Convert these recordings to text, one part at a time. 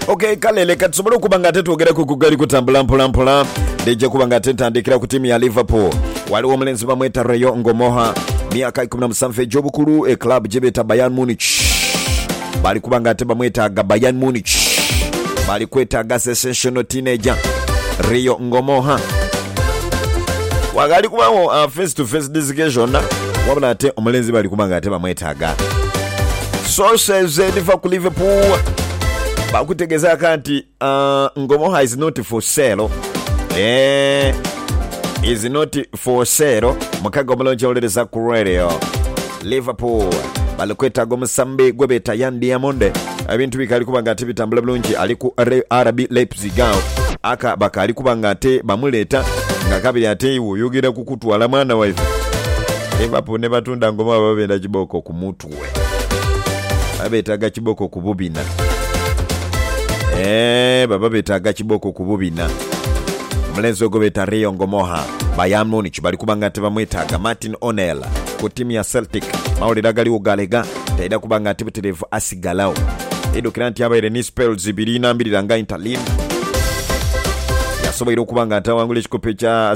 ok kale leka tusobole okuba nga ate twogeraku ku gali kutambula mpolampola ndija kuba nga ate ntandikira ku tiimu ya liverpool waliwo omulenzi bamweta rayo ngomoha myaka 17 egy'obukulu e club gyebeeta bayan munich bali kuba nga ate bamwetaaga bayan munich bali kwetaaga sensational teenager rio ngomoha wagali kubawo uh, face to face discussion wabula ate omulenzi bali kuba nga ate bamwetaaga Sources edhiva ku Liverpool bakutegezaaka nti uh, Ngomoha is not for sale eh, is not for sale mukaga omulungi owuliriza ku radio Liverpool bali kwetaaga omusambi gwe beeta Yan Diamond ebintu bikaali kuba nga ate bitambula bulungi ali ku Re- RB Leipzig awo aka bakaali kuba nga ate bamuleeta nga kabiri ate iwe oyogera kukutwala mwana waife Liverpool ne batunda Ngomoha baba benda kibooko ku mutwe Gwe. Baba betaaga kiboko ku bubina. Eeh, baba betaaga kiboko ku bubina. Omulenzi ogwo beeta Rio Ngomoha. Bayern Munich bali kuba nga tibamwetaaga. Martin O'Neill ku tiimu ya Celtic. Amawulire agaliwo galega taidha kuba nga ntibitirivu asigalagho. Idhukira nti abaire ni spells ibiri inambirira nga Inter Lin. Yasoboire okuba nga taghangula ekikopo ekya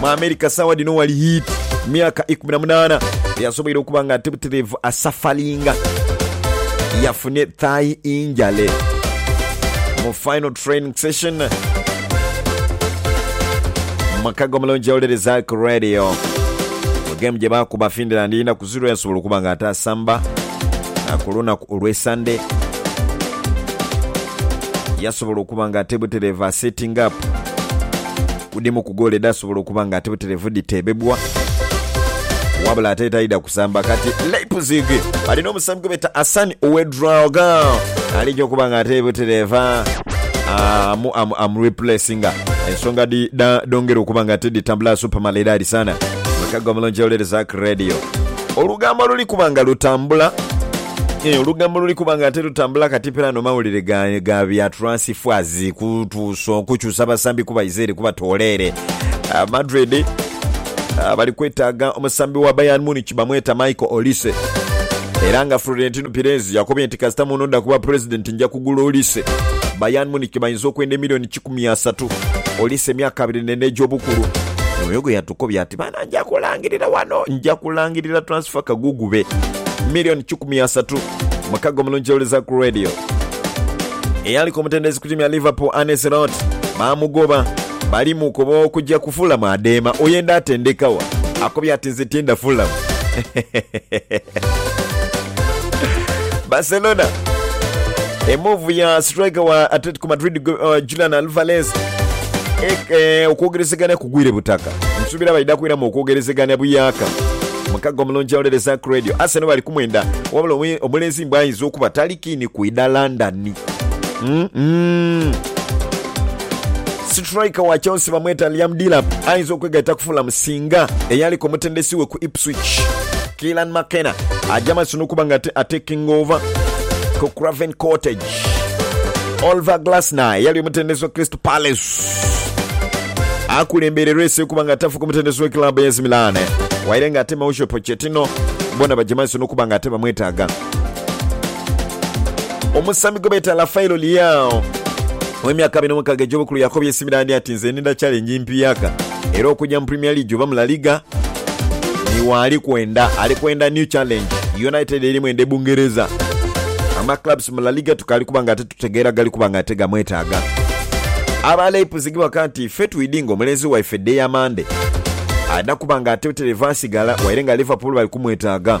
Mu America saawa dhino wali heat myaka ikumi na munaana yasoboire okuba nga ate butereevu asafalinga yafune thigh injale mu final training session makago mulungi yawulereza ku radio mu game gye baakuba Finland ina ku zero yasobola okuba nga ate asamba na ku lunaku olw'e Sunday yasobola okuba nga ate butereevu asetting up Ku dhimu ku goolo edhaasobola okuba nga ate butereevu dhiteebebwa, wabula ate taidha kusamba. Kati Leipzig bali n'omusambi gwe beeta Hassan Ouedraogo alija okuba nga ate butereevu amu amu amu replacinga. Ensonga dhi dha dhongera okuba nga ate dhitambula super malidaadi sana. Mukago omulungi owuliriza Ark Radio. Olugambo luli kuba nga lutambula. Eeh olugambo luli kuba nga ate lutambula kati pera no mawulire ga, ga bya transfers kutuuso kukyusa basambi kubaiza ere kubatoola ere. Ah, Madrid ah, bali kwetaaga omusambi wa Bayern Munich bamweta Michael Olise era nga Florentino Perez yakobye nti kasita munoda kuba president nja kugula Olise. Bayern Munich bayinza okwenda emiliyoni makumi asatu, oli se myaka abiri n'ena egy'obukulu. Mwoyo gwe yatukobya ati, Baana, nja kulangirira wano, nja kulangirira transfer kagugube million kikumi asatu. Mukago omulungi owuliriza ku radio. Eyaliku omutendesi ku tiimu ya Liverpool, Arne Slot, baamugoba. Bali mu kuba okugya ku Fulham adeema. Oyenda ate ndekawa. Akobya ati, Nze tienda Fulham. Barcelona emuvu ya striker wa Atletico ku Madrid gwe, uh, Julian Alvarez e, e, okwogerezegania kugwire butaka nsuubira baidha kwiramu okwogerezegania buyaka mukaga omulungi awulire Zack Radio Arsenal bali kumwenda wabula omu- omulenzi mbwa ayinza okuba tali kiini kwidha London mm -mm. Striker wa Chelsea bamweta Liam Delap ayinza okwegaita ku Fulham singa eyaliko omutendesi we ku Ipswich Keelan McKenna ajja maaso n'okuba nga ate- atekinga ova ku Craven Cottage Oliver Glasner eyali omutendesi wa Crystal Palace akulembeire resi okuba nga tafu ku mutendesi wa club ya AC Milan waire nga ate Mauricio Pochettino bona baja maiso n'okuba nga ate bamwetaaga. Omusambi gwe beeta Rafaelo Leao ow'emyaka abiri n'omukaaga egy'obukulu yakobye AC Milan ati nze ninda challenge mpiyaka era okuja mu Premier League oba mu La Liga ni waali kwenda. Ali kwenda new challenge. United eri mwenda e Bungereza. Ama clubs mu La Liga tukaali kuba nga titutegeera gali kuba nga ate gamwetaaga. Aba Leipzig baka nti ffe twidhi nga omulenzi waife dde ya Mande ada kuba nga ate terevasigala waire nga Liverpool bali kumwetaaga.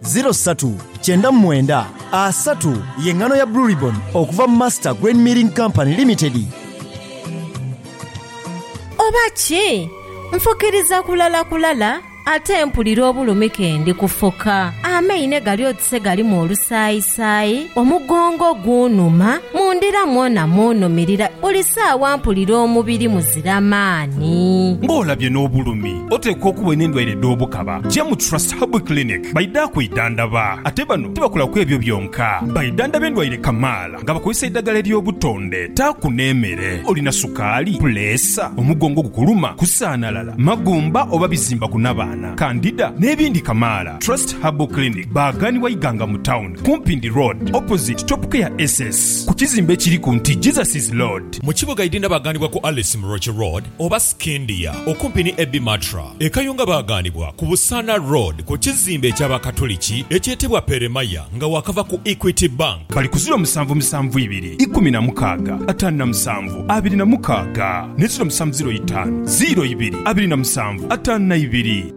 Ziro satu kyenda mu mwenda asatu ye ngano ya Blue Ribbon okuva mu Master Grain Milling Company Limited. Oba ki? Nfukiriza kulala kulala ate mpulira obulumi ke ndi kufuka. Amaine gali oti se galimu olusaayisaayi, omugongo gunhuma, mu ndira mwona munhumirira, buli saawa mpulira omubiri muzira maani. Ng'olabye n'obulumi Oteekwa okuba olina endwaire edh'obukaba, ja mu Trust Herbal Clinic baidha kwidhandaba. Ate bano tibakola ku ebyo byonka, baidhandaba endwaire kamaala nga bakozesa eidhagala ery'obutonde. Taaku n'emere. Olina sukaali, puleesa, omugongo ogukuluma, kusaanalala, magumba oba bizimba ku nabaana, kandida n'ebindi kamaala. Trust Herbal Clinic baaghanibwa Iganga mu tawuni ku Mpindi Road opposite Topcare SS ku kizimbe ekiri ku nti Jesus is Lord. Mu kibuga Idinda baaghanibwa ku Alice Muroki Road oba. Scindia, okumpi ni Ebi Matra e Kayunga baaghanibwa ku Busaana Road ku kizimbe eky'Abakatuliki ekyetebwa Peremaya nga waakava ku Equity Bank. Bali ku ziro musanvu musanvu ibiri ikumi na mukaaga ataanu na musanvu abiri na mukaaga, ni ziro musanvu ziro itaanu ziro ibiri abiri na musanvu ataanu na ibiri.